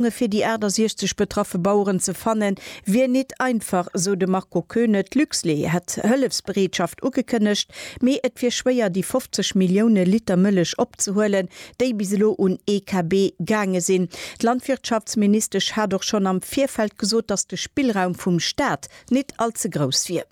Léisunge fir déi 68 betraffe Baueren ze fanne wier nit einfach, esou de Marco Koeune. D'Luxlait hätt Hëllefsbereetschaft ugekënnegt, mee et wier schwéier, déi 50 Millioune Liter Mëllech opzehuelen, déi bis elo un EKB gaange sinn. D'Landwirtschaftsministesch hat och schonn am Virfeld gesot, datt de Spillraum vum Staat nit all ze grouss wier.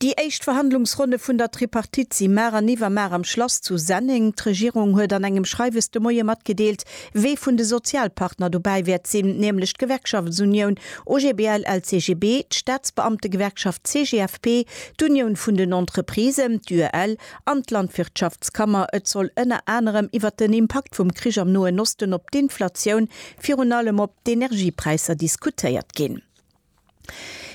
Déi éischt Verhandlungsronne vun der Tripartite si mar an iwwermar am Schlass zu Senneng. D'Regierung huet an engem Schreiwes de Moie matgedeelt, wee vun de Sozialpartner dobäi wäert sinn, nämlech d'Gewerkschaftsunioun OGBL LCGB, d'Staatsbeamtegewerkschaft CGFP, d'Unioun vun den Entreprisen, d'UEL, an d'Landwirtschaftskammer. Et soll ënner anerem iwwert den Impakt vum Krich am Noen Osten op d'Inflatioun, virun allem op d'Energiepräisser, diskutéiert ginn.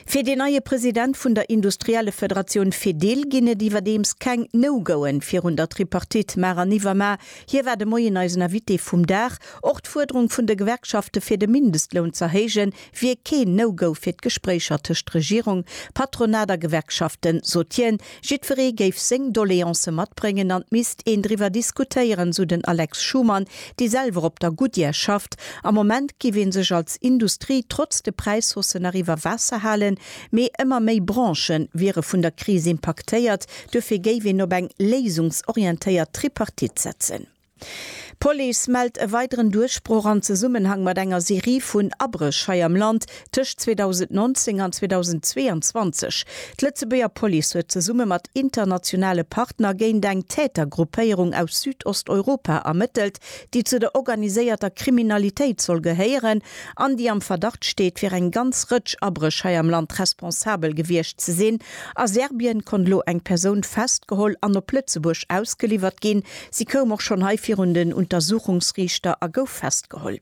Fir dee neie President vun der Industriellefederatioun Fedil ginn et iwwerdeems keng No-Goen virun der Tripartite mar an iwwermar. Hie war de Moien eisen Invité vum Dag. Och d'Fuerderung vun de Gewerkschafte fir de Mindestloun z'erhéije wier keen No-Go fir d'Gespréicher tëscht Regierung, Patronat a Gewerkschaften, sot hien. Jiddweree géif seng Doleancë matbréngen an et misst een driwwer diskutéieren, esou den Alex Schumann, dee selwer op der Goodyear schafft. Am Moment géif ee sech als Industrie trotz de Präishausse nach iwwer Waasser halen, mee ëmmer méi Branche wiere vun der Kris impaktéiert. Duerfir géif een op eng léisungsorientéiert Tripartite setzen. D'Police mellt e weideren Duerchbroch an Zesummenhang mat enger Serie vun Abréch hei am Land tëscht 2019 an 2022. D'Lëtzebuerger Police huet zesumme mat internationale Partner géint eng Tätergruppéierung aus Südosteuropa ermëttelt, déi zu der organiséierter Kriminalitéit soll gehéieren an déi am Verdacht steet, fir eng ganz Rëtsch Abréch hei am Land responsabel gewiescht ze sinn. A Serbien konnt elo eng Persoun festgeholl an op Lëtzebuerg ausgeliwwert ginn, Si koum och schonn hei virun den Untersuchungsriichter a gouf festgeholl.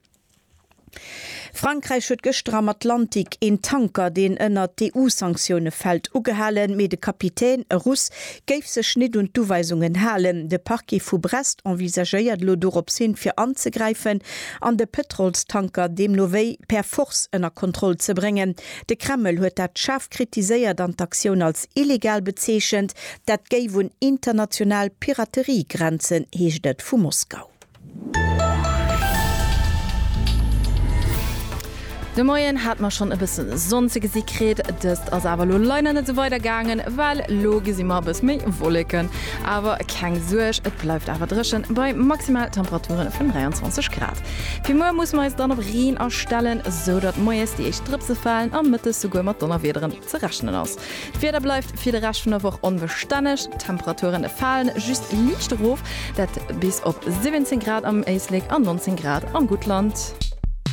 Frankräich huet gëschter am Atlantik een Tanker, deen ënnert d'EU-Sanktioune fält, ugehalen, mee de Kapitän, e Russ, géif sech nit un d'Uweisungen halen. De Parquet vu Brest envisagéiert elo doropshin fir anzegräifen an de Pëtrolstanker deemno wéi per Force ënner Kontroll ze bréngen. De Kreml huet dat schaarf kritiséiert an d'Aktioun als illegal bezeechent. Dat géif un international Piraterie grenzen, heescht et vu Moskau. De Moien hat mer schonn e bëssen Sonn ze gesi kritt, dëst ass awer lo leider net sou weider gaangen, well lo gesi mer e bëss méi Wolleken. Awer keng Suerg, et bleift awer dréchen bei maximal Temperaturen vun 23 Grad. Fir muer musse mer eis dann op Reen astellen, sou datt moies déi éischt Drëpse falen a mëttes souguer mat Donnerwiederen. Ze rechnen ass. D'Wieder bleift fir de Rescht vun der Woch onbestänneg, d'Temperaturen falen just liicht erof, dat bis op 17 Grad am Éislek an 19 Grad am Guttland.